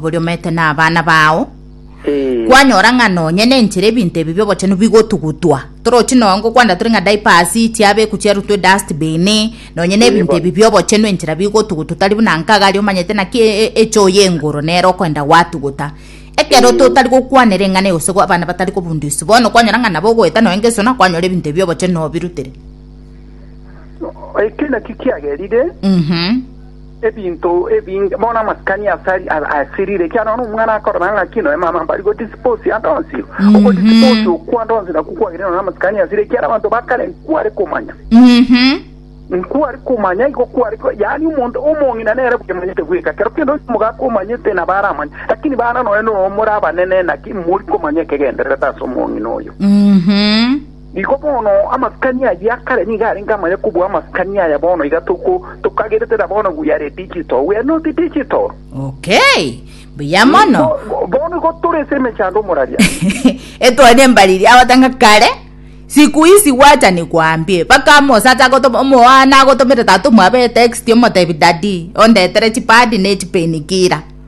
boria omete nabana bao kwanyora ng'a nonye nenchera ebinto ebi biobochenu bigotugutwa torochi noyo ngokwanera tore ng'a diapers chiabeku chiarutwa edustbin nonye na ebinto ebi biobochenu enchera bigotugutwa tari buna nkagari omanyete naki e- e- echoo ya engoro nero okoenda gwatuguta ekero totari gokwanera eng'ana eye gose abana batari kobundia isi bono kwanyora ng'a nabo ogoeta nonya ngeso nakwanyora ebinto ebi biobochenu nobirutere Eki nakio kiagerire Mhm. ebinto ebinge bono amasikani asari a- asirire ekiagera bono omwana akorora ng'aki noe mama mbari godispose adonsio Mhm. ogodispose okwo adonsio nakwo kwagire noe amasikani asire ekiagera abanto bakare nkware komanya Mhm. nkwari kumanya iko kwari ko- yaani omonto omong'ina nere bwemanyete bweka kero kende onsi omogaka omanyete nabo aramanya lakini bana noe no muri abanene naki mori komanya ekegendererete ase omong'ina oyo Mhm. Nigo bono amasikani ayio a kare nigo arenge amaya kobua amasikani aya bono iga toko, tokageretera bono we are digital, we are not digital. Okay, mbuya mono. Bo- Bono igo tore ase emechando omoraria. etwani embariri agotanga kare siku isi gwacha nikwambie baka mosata agotoma omoana agotomera tata omwabo etext omotebi dadi ondetere chipadi ne chipenikira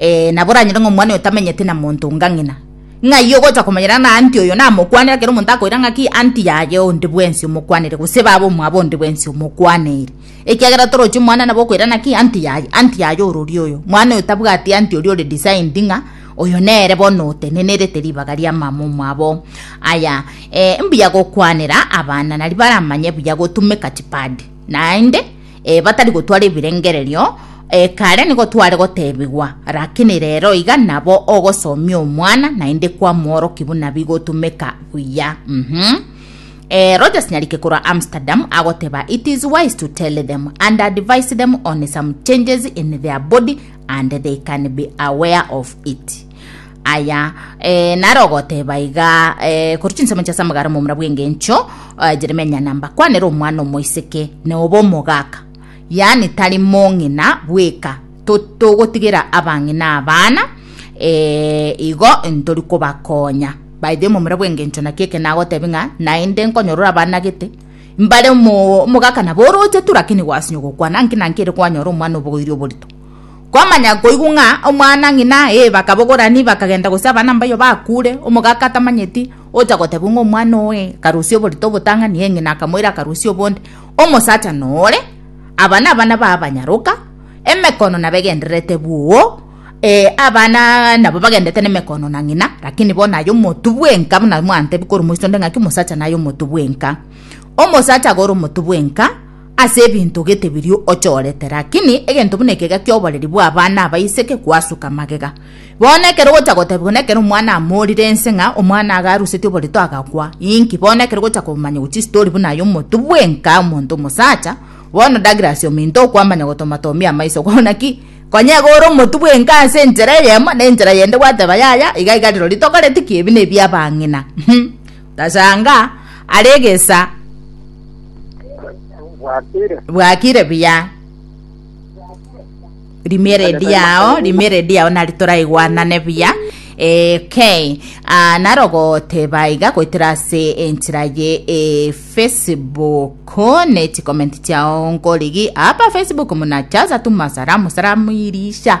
Ee, nabo oranyore ng'a omwana oyo tamenyeti na monto onga ng'ina. Ng'ai ogocha komanyera ng'a anti oyo namokwanere ekero omonto akoira ng'a ki anti yaye onde bwensi omokwanere gose baba omwabo onde bwensi omokwaneire? Ekiagera torochi omwana nabo okoira ng'a ki anti yaye anti yaye orori oyo. Mwana oyo tabwati anti oria ore designed ng'a oyo nere bono otenenerete ribaga ria mama omwabo. Aya, ee mbuya gokwanera abana nari baramanye buya gotumeka chipad. Naende. e, batari gotwara ebirengererio, e, kare nigo tware gotebigwa, rakini rero iga nabo ogosomia omwana naende kwamworoki buna bigotumeka buya. Mhm. E, Rogers Nyarike korwa Amsterdam agoteba, It is wise to tell them and advise them on some changes in their body and they can be aware of it. Aya, ee, naro ogoteba iga, ee, korwa chinsemo chia Samgara omomura bw'engencho, ee, Jeremia nambakwanere omwana omoiseke na obe omogaka, yaani tari mong'ina bweka, to, togotigera abang'ina abana, ee, igo ntori kobakonya baethe omomura bw'engencho naki eke nagotebia ng'a naende nkonyora orabanagete mbare omo, omogaka nabo oroche tu, rakini gwasinywa gokwana nki na nki ere kwanyora omwana obogoiri oborito. Kwamanya koigwa ng'a omwana ng'ina ee bakabogorani bakagenda gose abana mbayo bakure, omogaka atamanyeti ocha gotebwa ng'a omwana oo ee akarusia oborito obotang'ani ee ng'ina akamoira akarusia obonde. Omosacha nore, aba nabana ba abanyaroka, emekono nabegendererete bwoo, ee abana nabo bagendete nemekono na ng'ina, lakini bono aye omotu bwenka buna mwantebia korwa moiso onde ng'aki omosacha naye omotu bwenka. Omosacha agore omotu bwenka. ase ebinto gete biria ochorete, rakini egento buna ekega ki'oboreri bw'abana abaiseke gwasuka magega. Bono ekero gocha gotebigwa nekero omwana amorire inse ng'a omwana iga arusetie oborito agakwa, inki, bono ekero gocha komanyegwa chistori buna aye omotu bwenka omonto omosacha, bono Douglas ominto okwamanya gotomatomia amaiso kore naki, konya iga ore omotu bwenka ase enchera eyemo, na enchera yende gwateba yaya, iga iga rirori tokoreti ki, ebi nebi'abang'ina, hum. Tasanga are egesa bwakire buya rimeredi yao rimeredi yao nari toraigwanane buya okay uh, narogoteba iga goitera ase enchera ye e facebook ne chicomment chiao nkorigi apa facebook muna chaza tu masalamu salamu irisha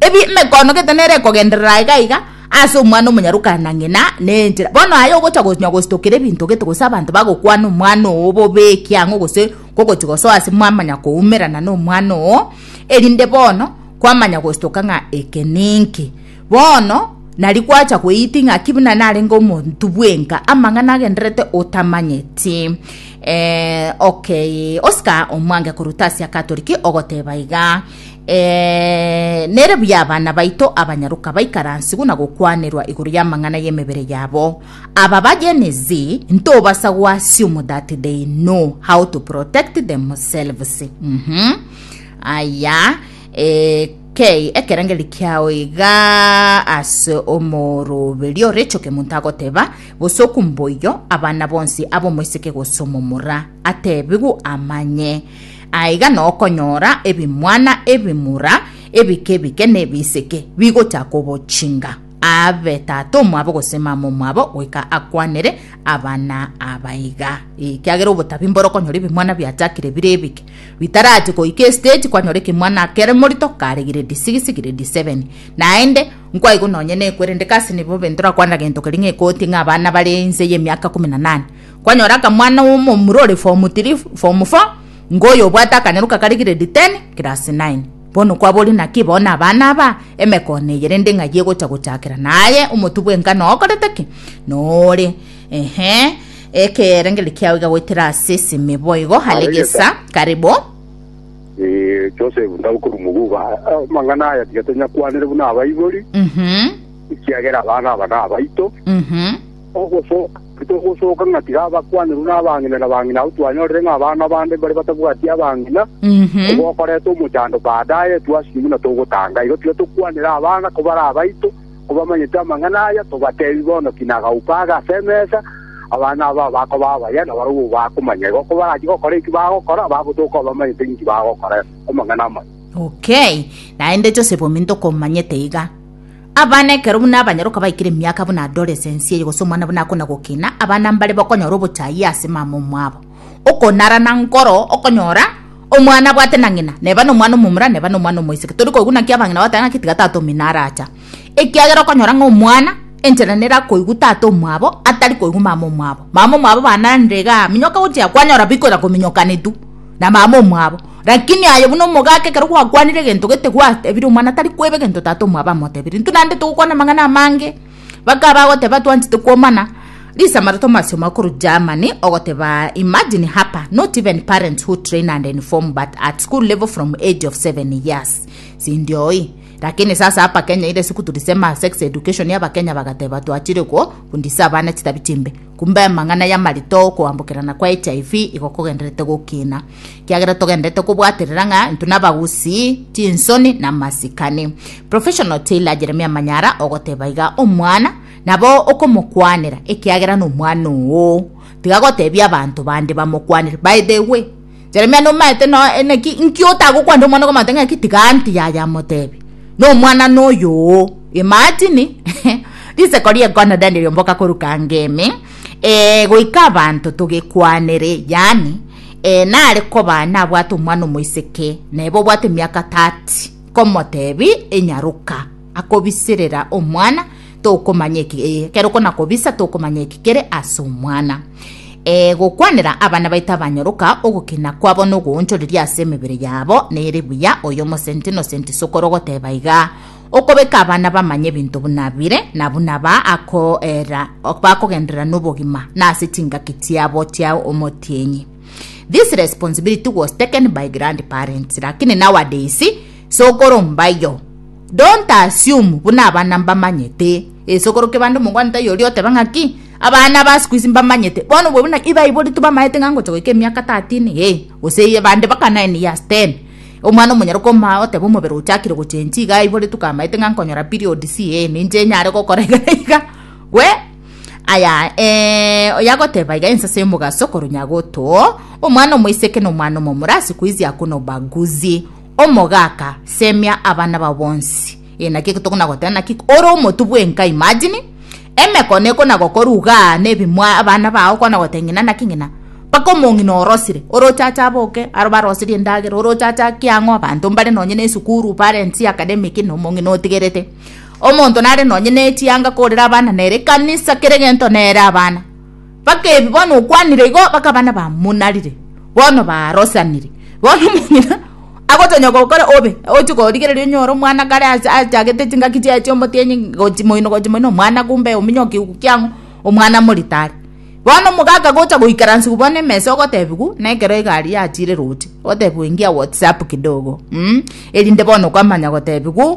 Ebi emekoono gete nere ekogenderera aye gaiga ase omwana omonyarokana na ng'ina na enchera. Bono aye ogocha konya gositokera ebinto gete gose abanto bagokwana omwana oo bobe ekiang'o gose kogochi gosoa ase mwamanya koumerana na omwana oo erinde bono kwamanya gositoka ng'a eke ninki. Bono nari gwacha gweiti ng'a ki buna narenge omonto bwenka amang'ana agendererete otamanyeti. Eeh okay Oscar omwange koruta ase akatori ki ogoteba iga. Ee, nere buya abana baito abanyaroka baikaransigwe na gokwanerwa igoro y'amang'ana y'emebere yabo. Aba ba Gen Z ntobasa goassume that they know how to protect themselves. Mhm. Aya, eh, kei ekerengeri kiao iga ase omoroberio Rachel Kemunto agoteba bosoku mboiyo abana bonsi abomoiseke gose omomura atebigwe amanye Aiga nokonyora ebimwana ebimura ebike-bike na ebisike bigocha kobochinga, aabe tata omwabo gose mama omwabo, goika akwanere abana aba iga. Ekiagera obotabi mborokonyora ebimwana biachakire bire ebike, bitarache goika estage kwanyora ekemwana kere morito kare grade six, grade seven. Naende nkwaigo nonye nekwe rende kasi nibobe ntorakwanera gento keria ng'a ekoti ng'a abana bare inse y'emiaka kumi na nane, Kwanyora akamwana omomura ore form three, form four, ngoyo obwate akanyaruka kare grade ten, class nine. Bono kwabori naki bono abana aba emekono eye rende ng'ai egocha gochakera? Naye omotu bw'engano okorete ki? Nore, ehe, ekerengererio kiao iga goetera ase esimi boigo are gesa. Karibu. Eh, Joseph Ndau korwa Muguba. Ah, Amang'ana aya tiga tonyakwanere buna abaibori, Mhm, ekiagera abana aba nabaito. mhm, ogosoka Titogosooka ng'a tiga abakwanerwa na abang'ina na bang'ina abwo twanyorire ng'a abana bande mbare batabwati abang'ina, obo okoreta omochando baadaye etwasire buna togotanga. Igo tiga tokwanere abana kobare abaito, kobamanyete amang'ana aya, tobateebie bono ki nagauka age ase emesa, abana aba bakoba abaya, na barabwo bakomanya. Igo kobarachie gokora eki bagokora, bagotoka obamanyete ninki bagokora amang'ana amaya. Okay, naende Joseph ominto komanyete iga. Abana ekero buna abanyaroka baikire emiaka buna adoresensi eye gose omwana buna akona gokina, abana mbare bokonyora obochayia ase mama omwabo. Okonara na nkoro okonyora omwana abwate na ng'ina, neba nomwana omomura, neba nomwana omoiseke. Tori koiguna ki abang'ina bagoteba ng'aki tiga tata omino aracha. Ekiagera okonyora ng'a omwana enchera nere akoigwa tata omwabo atari koigwa mama omwabo. Mama omwabo bana nere igaa, minyoka gochia kwanyora bikoira kominyokanetwa na mama omwabo. Lakini aye buna omogaka ekero gwakwanire egento gete gwatebire omwana tari kweba egento tata omwabo amotebire intwe naende togokwana amang'ana amange baka bagoteba twanchete kwomana risamara tomasio makuru Germany ogoteba imagine hapa not even parents who train and inform but at school level from age of 7 years sindioi lakini sasa hapa Kenya ile siku tulisema sex education ya bakenya bagateba twachire ko fundisa abana chitabi chimbe Kumbe amang'ana y'amarito 'okoambokerana kwa hiv igo kogendererete gokina, ekiagera togendererete kobwaterera ng'a intwe nabagusii chinsoni na amasikani. Professional tailor Jeremia Manyara ogoteba iga, Omwana nabo okomokwanera ekiagera nomwana oo, tiga gotebia abanto bande bamokwanere, by the way. Jeremia nomaete noe eneki inki otagokwanire omwana okomate ng'aki tiga anti yaya amotebi nomwana noyoo imagine riseko riekono dani riomboka koruka ngemi eh, goika abanto togekwanere yani eh, nare koba nabwate omwana omoiseke nebe obwate emiaka 30 komotebi inyaruka akobisirera omwana tokomanya eki eh, kero konakobisa tokomanya eki kere ase omwana e gokwanera abana baito abanyoroka ogokina kwabo nogoonchoreria ase emebere yabo nere buya oyo omosenti nosenti sokoro goteba iga okobeka abana bamanye ebinto buna bire na buna ba akoera bakogenderera nobogima na ase chingaki chiabo chia omotienyi this responsibility was taken by grandparents lakini nowadays Sokoro mbayo. Don't assume buna abana mbamanyete. Esokoro kebande omogwanete aye oria otebe ng'aki? Abana ba sikuisi mbamanyete. Bono obwo buna ebaiborete bamaete ng'a ngocha goika emiaka 13 ee gose eye bande baka 9 years 10. Omwana omonyene okomaa otebe omobere ochakire gochenchi iga aiboretwe kamaete ng'a nkonyora periods ee ninche nyare gokora iga na iga. We aya ee oyagoteba iga ensase y'omogaso koru nyagoto. Omwana omoiseke nomwana omomura sikuisi hakuna ubaguzi. Omogaka, semia abana bao bonsi. Ee, naki eke tokona-goteba, naki ore omotu bwenka, imagine, emekono ekona-gokora ugaa nebimo abana bao kona-goteba ng'ina naki ng'ina, mpaka omong'ina orosire, oroche ache aboke, aro baroserie endagera, oroche ache ake ang'o, abanto mbare nonye ne esukuru, parents, academic, na omong'ina otigerete. Omonto nare nonye ne echianga korera abana nere ekanisa, kera egento nere abana. Bakebi bono okwanire igo bakaba nabamonarire bono barosanire. Bono omong'ina agotonya gokora obe oche korigereria onyore omwana kare ase achagete chingaki chiaye chia omotienyi gochi moino gochi moino omwana kumbe ominyo kegwe kiang'o omwana moritari. Bono omoka akagocha goikaransiwa bono emesa ogotebiwa na ekero egari yachire roche otebiwa ingia whatsapp kidogo mh erinde bono okamanya gotebiwa.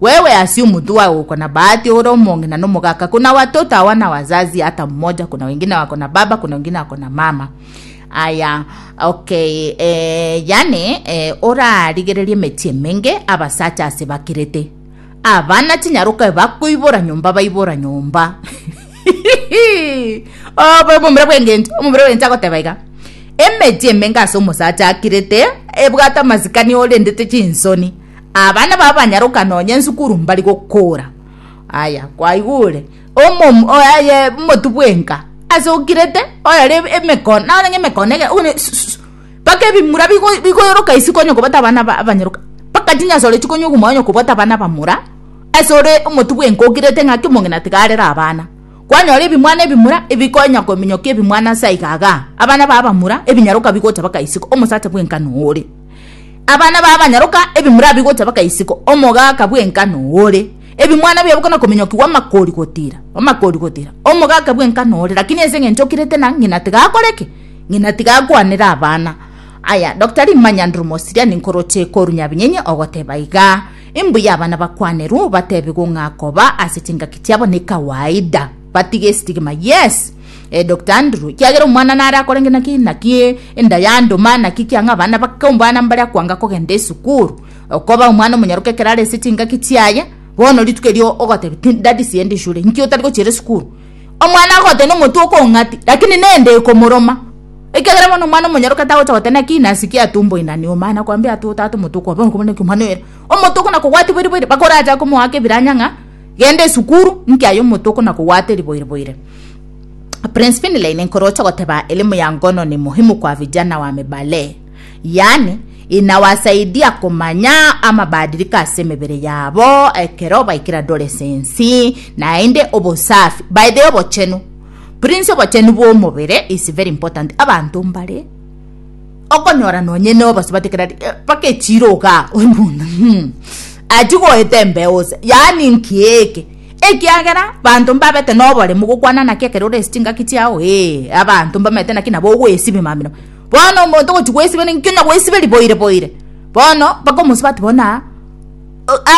Wewe asie omonto wagoko na bahati ore omong'ina na omogaka kona watoto awa na wazazi hata mmoja kona wengine wako na baba kona wengine wako na mama aya okay eh, yani eh, orarigererie emeti emenge abasacha ase bakirete abana chinyaroka bakoibora nyomba baibora nyomba obo omomura bw'engento omomura bw'engento agoteba iga emeti emenge ase omosacha akirete ebwate amasikani orendete chinsoni Abana babo banyaroka nonya ensukuru mbari gokora. Aya, kwaigure omomu oye omotu bwenka ase okirete oyore emekon na onye emekon ege ogone baka ebimura bigoyoroka isi konye kobata abana abanyaroka baka chinyasore chikonye koguma onye kobwate abana abamura ase ore omotu bwenka okirete ng'aki omong'ina tiga arere abana. Kwanyora ebimwana ebimura ebikonya kominyokia ebimwana ase aiga igaa abana babo abamura ebinyaroka bigocha baka isiko omosacha bwenka nore. Abana babo banyaroka ebimura bigocha baka isiko, omogaka bw'engano ore, ebimwana biabo kona kominyokigwa amakori gotira, amakori gotira, omogaka bw'engano ore. Lakini ense ng'encho okirete na ng'ina tiga akore ki? Ng'ina tiga akwanere abana. Aya, Dokita rimanya ndiromosiriani nkoroche koru nyabinyenye ogoteba iga, Imbuya abana bakwanerwe, bateebigwe ng'a koba ase chingaki chiabo nekawaida. Batige estigma yes eh, Doctor Andrew kiagera omwana nare akore nge naki naki enda ya ndoma naki kiang'a abana bake ombwana mbare akwanga kogenda esukuru okoba omwana omonyaroke ekero are ase chingaki chiaye bono rituko erio ogotebi tu daddy sienda eshure nki otari gochiera esukuru omwana agogotebia nomonto okong'ati lakini nende ekomoroma ekiagera bono omwana omonyaroke tagocha goteba naki nasi kiatumboinani omana akwambia ata ota ata omonto okwa bono okoba naki omwana oyo ere omonto okona kogwatia boiri boiri bakoracha komoaka ebiranya ng'a Genda esukuru nkia yomotoko na kogwata eriboire boire. Prince Finlay nenkoroche goteba elimu ya ngono ni muhimu kwa vijana wamebalee. Yaani inawasaidia komanya amabadiliko ase emebere yabo ekero baikire adolescence naende obosafi by the obochenu. Prince obochenu bwomobere is very important abanto mbare. Okonyora nonye nobosa batekera ati "Eh, mpaka echiro ogaa oimunda hmm, achi goeta embeo ose yaani nki eke ekiagera banto mbabete noboremu gokwana naki ekero orese chingaki chiao ee abanto mbamete naki nabo ogoesibe mamino bono omonto gochi goesibe ninki onya goesibe riboire boire bono mpaka omosie bati bona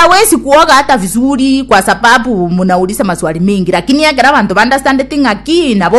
awesi kuoga hata vizuri kwa sababu mnaulisa maswali mingi lakini ekero abanto baunderstandeti ng'aki nabo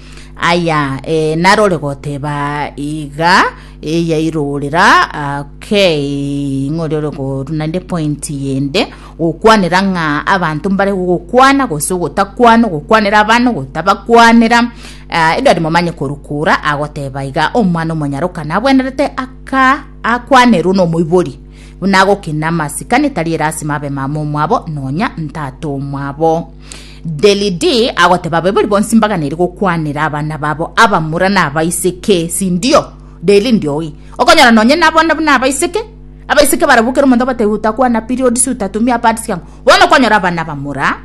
Aya, eh, narore goteba iga eh, yairorera ah, okay ng'ori ore koru naende point yende gokwanera ng'a abanto mbare gokwana gose gotakwana gokwanera abana gotabakwanera ah, edwari momanye korukura agoteba iga omwana omonyaroka nabwenerete aka akwanerwe nomoibori buna agokina amasikani tari erasima abe mama omwabo nonya ntata omwabo Delidi agoteba abaibori bonsi mbaganeire gokwanera abana babo abamura na abaiseke, sindio? Delindi oyi okonyora nonye nabo na buna abaiseke abaiseke barabwo kera omonto abatebia utakwana periods utatumia pads yango bono okonyora abana abamura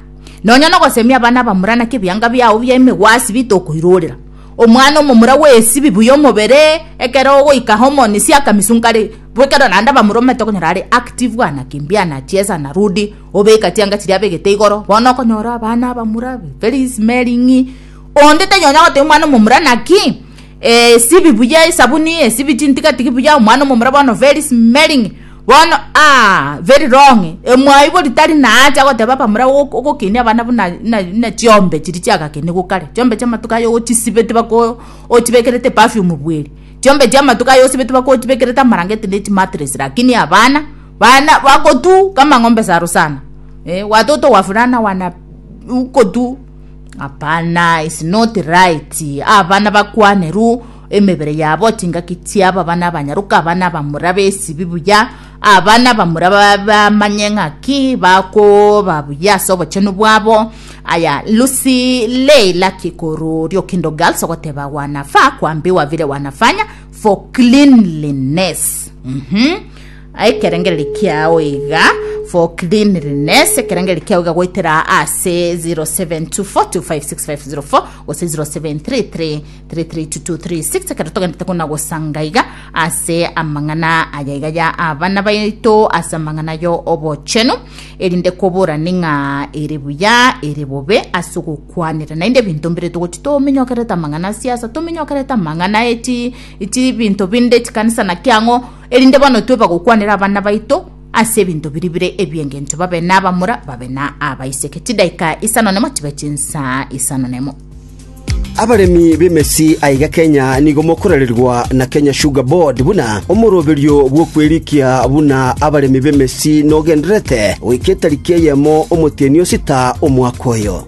nonye nogosemia abana abamura naki ebianga biao bia emegwasi bitokoirorera omwana omomura gwesibi buya omobere ekero ogoika hormones akamisunka are bwekero naende abamura omanyete okonyora are active anakimbi anachesa anarudi Obeka chianga chiria abegete igoro, bono okonyora abana abamura, Felix, Mary, ng'i onde taiyo onya gotebia omwana omomura naki eh, sibi buya esabuni, esibi chintigatigi buya, omwana omomura bono Felix, Mary, ng'i bono aah very wrong, emwaibori tari naacha goteba abamura ok- ogokenia abana buna na na chiombe chiria chiagakenigwe kare, chiombe chia amatuko aye ochisibeti bako ochibekerete perfume bweeri, chiombe chia amatuko aye osibeti bako ochibekerete amarangeti na echimatress, lakini abana. Bana bakotu kama ng'ombe sa Rusana eh, watoto wavulana wana ukotu hapana is not right abana bakwane ru emebere yabo chingaki chiabo abana abanyaruka abana abamura besibi buya abana abamura bamanye ng'aki bakoba buya ase obochenu bwabo aya lusi leila kikoru riokindo girls ogoteba wanafa kwambi wavire wanafanya for cleanliness mm -hmm. Aye ekerengererio kiao iga for cleanliness, ekerengererio kiao iga goetera ase 0724256504 gose 0733332236 ekero togendete kona gosanga iga ase amang'ana aya iga ya abana baito ase amang'ana yo obochenu erinde koborani ng'a ere buya ere bobe ase ogokwanera naende ebinto mbire togochi tominyokerete amang'ana siasa tominyokerete amang'ana eti eti binto binde chikanisa naki ang'o Erinde bono toe bagokwanera abana baito ase ebinto biria bire ebi'engencho babe n'abamura, babe na abaiseke. Chidaika isano nemo chibe chinsaa isano nemo. Abaremi b'emesi aiga Kenya nigo mokorererwa na Kenya Sugar Board buna omoroberio bw'okwerikia buna abaremi b'emesi nogendererete goika etariki eyemo omotienyi osita omwaka oyo.